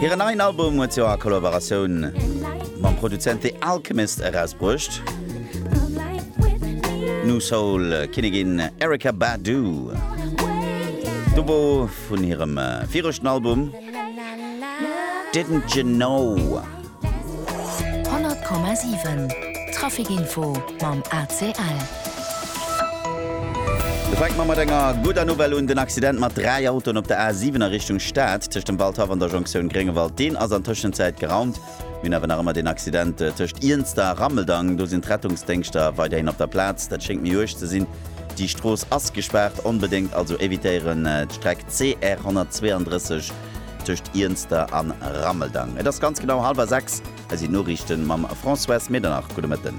Hiren neien Album huet se a Kollaboratioun mam Produzent The Alchemist erausbruecht. Nu Soul Kinnigin Erykah Badu. Dubo vun hirem äh, viregten Album Didn't You Know. 100,7 Trafic Info mam ACL. Da fänke mer mat enger gudder Nouvelle un. Den Accident mat dräi Autoen op der A 7 a Richtung Stad, tëscht dem Waldhaff an der Jonktioun Gréngewald, deen ass an Tëschenzäit geraumt. Mir hunn awer nach ëmmer den Accident tëscht Iernster a Rammeldang. Do sinn d'Rettungsdéngschter weiderhin op der Plaz. Dat schéngt méi uerg ze sinn. Déi Strooss ass gespaart. Onbedéngt also evitéieren d'Streck CR 132. tëscht Iernster an Rammeldang. Et ass ganz genau halwer 6. Hei sinn d'Noriichten mam Françoise Medernach. Gudde Mëtten.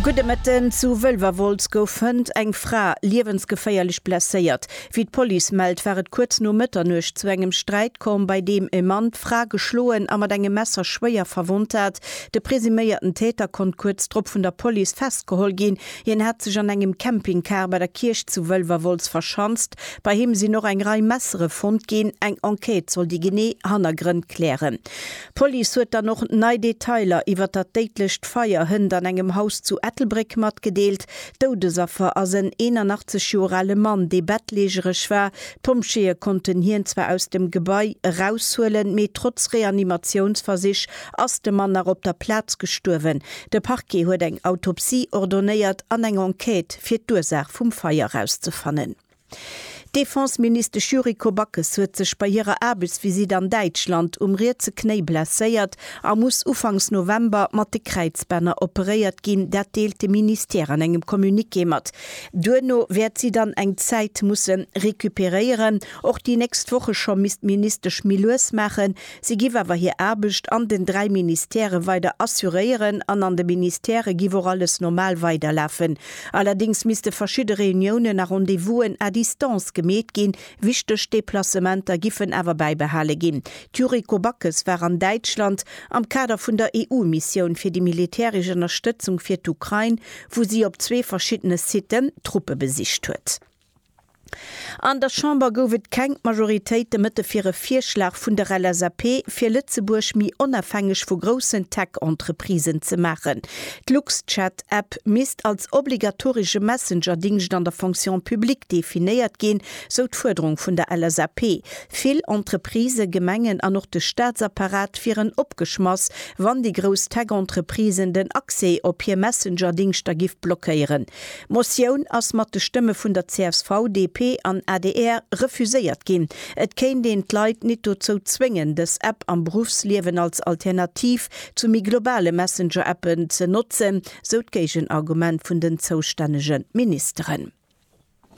Gudde Mëtten. Zu Wëlwerwolz gouf hënt eng Fra liewensgeféierlech blesséiert. Wéi d'Police mellt, war et kuerz no Mëtternuecht zu engem Sträit komm, bei deem e Mann d'Fra geschloen a mat engem Messer schwéier verwonnt hat. De presuméierten Täter konnt kuerz drop vun der Police festgeholl ginn. Hien hat sech an engem Campingcar bei der Kierch zu Wëlwerwolz verschanzt. Bei him sinn och eng Rei Messere fonnt ginn. Eng Enquête soll déi genee Hannergrënn klären. D'Police huet dann och nei Detailer iwwer dat déidlecht Feier hënt an engem Haus zu Ettelbréck matgedeelt. Doudesaffer ass en 81 Joer ale Mann, dee bettlägereg war. D'Pompjeeë konnten hien zwar aus dem Gebai eraushuelen, mee trotz Reanimatiounsversich Ass de Mann nach op der Plaz gestuerwen? De Parquet huet eng Autopsie ordonéiert an eng Enquête, fir d'Ursaach vum Feier erauszefannen. D'Defenseministesch Yuriko Backes huet sech bei hirer Aarbechtsvisitt an Däitschland um rietse Knéi blesséiert a muss ufanks November mat de Kräizbänner operéiert ginn, dat deelt de Ministère an engem Communiqué mat. Duerno wäert si dann eng Zäit musse recuperéieren. Och déi nächst Woche scho misst d'Ministesch méi lues maachen, Si giff awer hir Aarbecht an den dräi Ministèrë weider assuréieren an an de Ministèrë giff och alles normal weiderlafen. Allerdings misste verschidde Reuniounen a Rendez-vousen à distance gemeet ginn. Wichteg Deplacementer giffen awer bäibehale ginn. D'Yuriko Backes war an Däitschland am Kader vun der EU-Missioun fir déi militäresch Ënnerstëtzung fir d'Ukrain, wou si op zwee verschiddene Siten Truppe besicht huet. An der Chamber gouf et keng Majoritéit de Mëtte fir e Virschlag vun der LSAP, fir Lëtzebuerg méi onafhängeg vu groussen Tech-Entreprisen ze maachen. D'Luxchat-App misst als obligatoresche Messenger-Dingscht an der Fonction publique definéiert ginn, sou d'Fuerderung vun der LSAP. Vill Entreprisë, Gemengen an och de Staatsapparat wieren opgeschmass, wann déi grouss Tech-Entreprisen den Accès op hir Messenger-Dingschter giff blockéieren. D'Motioun ass mat de Stëmme vun der csv, DP an adr refuséiert ginn. Et kéint een d'Leit nit dozou zwéngen, dës App am Beruffsliewen als Alternativ zu méi globale Messenger-Appen ze notzen, sou d'Géigenargument vun den zoustännege Ministeren.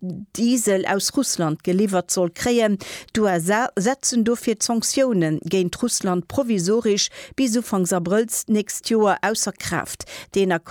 Diesel aus Russland geliwwert soll kréien. D'USA setzen dofir d'Sanktioune géint Russland provisorisch bis ufanks Abrëll d'nächst Joer ausser Kraaft.